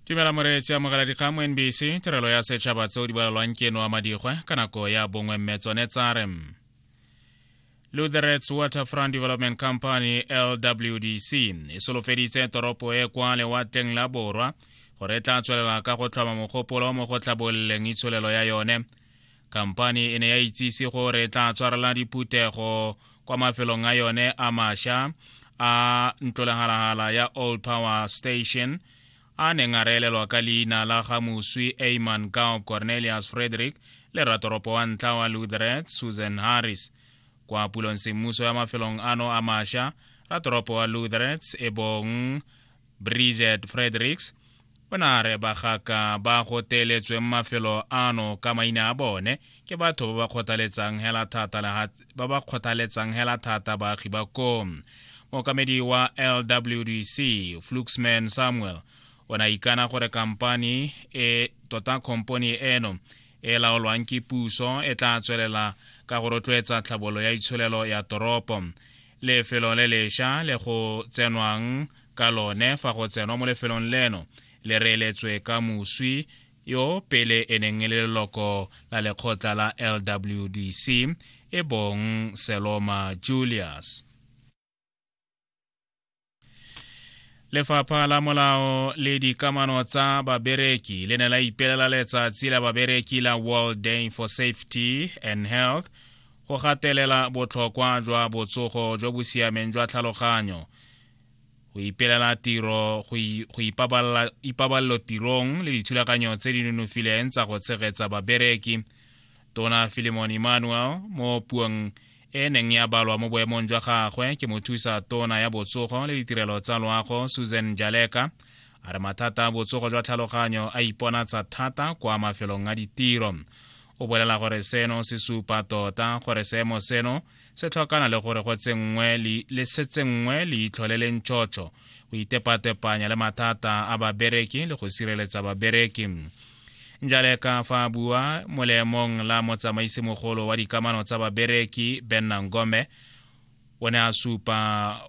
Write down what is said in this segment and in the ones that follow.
tumela moreetsi amogela dikgang mo nbc tirelo ya setšhaba tseo di bolalwang ke eno wa madikgwe ka nako ya bongwe mme tsone tsare lutherets waterfront development company lwdc e solofeditse toropo e kwa lewatleng la borwa gore e tla tswelela ka go tlhoma mogopolo mo go tlhabololeng itsholelo ya yone khamphani e ne ya itsise gore e tla tshwarela diphuthego kwa mafelong a yone a masha a ntlolegalagala ya old power station a neng a reelelwa ka leina la ga moswi aman gao cornelius frederick le ratoropo wa ntlha wa lutheret susan harris kwa pulong semmuso ya mafelong ano a masha ratoropo wa lutherets e bong bridget fredericks o ne a re bagaka ba go teeletsweng mafelo ano ka maina a bone ke batho ba ba kgothaletsang hela thata ba ba kgothaletsang hela thata baagi ba ko mookamedi wa lwdc fluxman samuel o ne a ikana gore kampani e tota komponi eno e laolwang ke puso e tla tswelela ka go rotloetsa tlhabololo ya itsholelo ya toropo lefelo le lesha le go tsenwang ka lone fa go tsenwa mo lefelong leno le reeletswe ka moswi yo pele e neng e le leloko la lekgotla la lwdc e bong seloma julius lefapha la molao le dikamano tsa babereki le ne la ipelela letsatsi la babereki la world day for safety and health go gatelela botlhokwa jwa botsogo jo bo siameng jwa tlhaloganyo go ipelela tiro go ipabalelo tirong le dithulaganyo tse di nonofileng tsa go tshegetsa babereki tona filimon emmanuel mo puong e neng ya balwa mo boemong jwa gagwe ke mothusa tona ya botsogo le ditirelo tsa loago susan jaleka a re mathata a botsogo jwa tlhaloganyo a iponatsa thata kwa mafelong a ditiro o bolela gore seno se supa tota gore seemo seno se tlhokana le gore go tsenngwe le se tsenngwe leitlho le leng tšhotšho go itepatepanya le mathata a babereki le go sireletsa babereki njale ka fa a bua molemong la motsamaisi mogolo wa dikamano tsa babereki benna ngome o ne a supa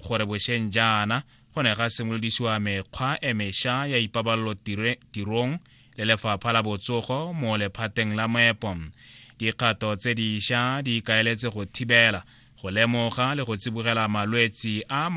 gore bosheng jaana go ne ga simolodisiwa mekgwa e mesha ya ipabalelo tirong le lefapha la botsogo mo lephateng la moepo dikgato tse diša di ikaeletse go thibela go lemoga le go tsibogela malwetsi a